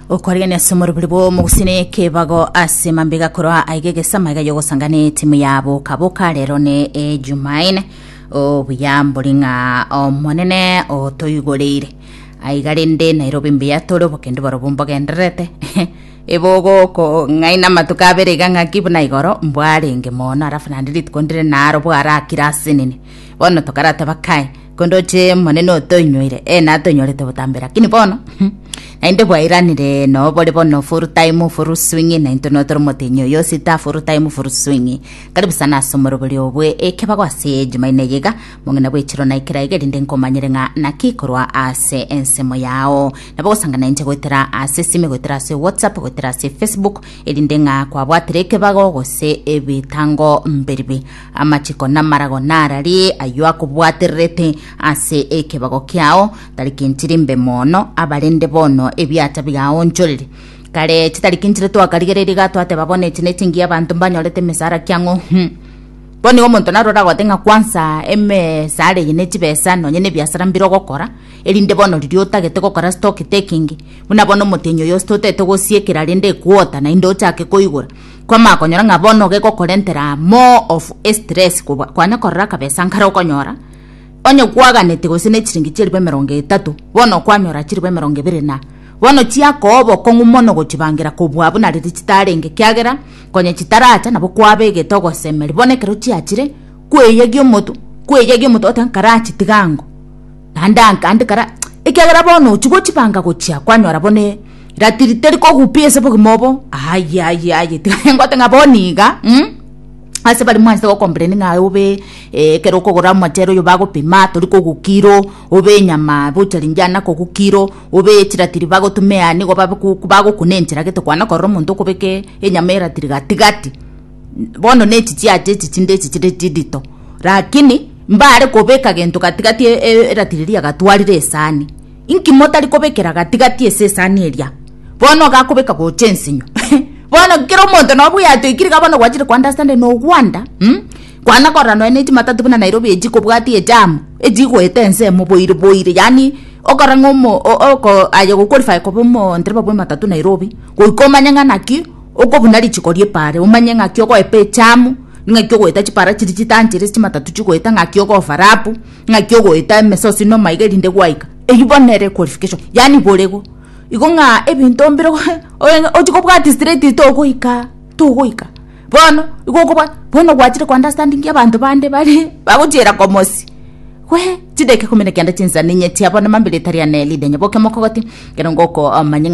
okoregania ase omorobiri bw'omogusii na ekebago ase mambega korwa aiga egesama iga yogosanga na etimu ya bokaboka rero ne ejumaine obuya mbori ng'a omonene otoigoreire aiga rende nairobi mbuya tore obokendu barobwo mbogendererete ebogoko ng'aina amatuko abere iga ng'aki buna igoro mbwarenge mono alafu naende rituko ndire naro bwarakire ase nini bono tokarateba kai Korende oche Omonene otoinyoire, ee natoinyorete botambe, lakini bono naende bwairanire no bore bono full time full swing nainto no tore motenyi oyo sita full time full swing karibu sana ase omorobori obwe ekebago ase jumaine yiga mong'ina bwechiro na ekera iga erinde nkomanyere ng'a naki korwa ase ensemo yao nabo gosangana inche goetera ase sime goetera ase whatsapp goetera ase facebook erinde ng'a kwabwatire ekebago gose ebitango mbiribi Amachiko namarago narari ayio akobwatererete ase ekebago kiao, tarikinchiri mbe mono, abarende bono ebiacha bigaonchorire. Kare chitarikinchire twakarigereiri iga twateba bono echi nechingiya abanto mbanyorete emesara kiang'o hm. Bono nigo omonto narore agote ng'a kwansa emesara eye nechibesa nonye nebiasara mbire ogokora erinde bono riria otagete gokora stock taking buna bono omotenyi oyo osi totete gosiekera rende equota naende ochake koigora Kwamanya konyora ng'a bono gegokorentera more of estress kobua kwanya korora akabesa nkare okonyora onye kwaganete gose ne chiringi chi'eribu emerongo etato bono kwanyora chiribu emerongo ebere na bono chiakoa obokong'u mono gochibangera kobua buna riria chitarenge kiagera konya chitaracha nabo kwabegete ogosemeri bono ekero chiachire kweyegia omotu kweyegia omotu oteba nkarachitige ango. naende ankande kara, ekiagera bono ochia gochibanga gochia kwanyora bone ratiri teri kogupia ase obogima obo, aye aye aye tiga nengote ng'a bono iga mh ase baria mwanchete gokompleni ng'a obe ekero okogora omochere oyo bagopima tori kogu kiro, obe enyama buchari ngiana kogu kiro, obe chiratiri bagotuma eani igo babe ku bagokuna enchera gete kwana korora omonto okobeke enyama eratiri gati gati. bono ne chichiacha echi chinde echi chire chidito, lakini mbare kobeka gento gatigati eratiri eria gatwarire esani. Inki motari kobekera gatigati ase esani eria? Bono iga akobeka gocha ensinyo bono kera omonto nabo oyatoikire iga bono gwachire koandastandi na ogwanda mh kwana korora nonya ne chimatatu buna Nairobi echi kobwati ejamu echi igoeta ense emoboire boire yaani okora ng'a omo o oko aye goqualify koba omondereba bw'ematatu Nairobi goika omanye ng'a naki. Okobuna richiko ri'epaara, omanye ng'aki ogoepa echamu, ng'aki ogoeta chipaara chiria chitanchere ase chimatatu chigoeta, ng'aki ogofa rapu, ng'aki ogoeta emesosi na omaiga erinde gwaika. Eyio bono nere equalification, yaani borego. Igo ng'a ebinto mbire ochi kobwati straight togoika, togoika. Bono, igo okobwat, bono gwachire ko understandingia abanto bande bare bagochiera komosi, wee, chidakika ikomi na kenda chinsa ninyeti abwo na mambia rita riane ridenye boke mokogote, ekero ngokoa omanye ng'a.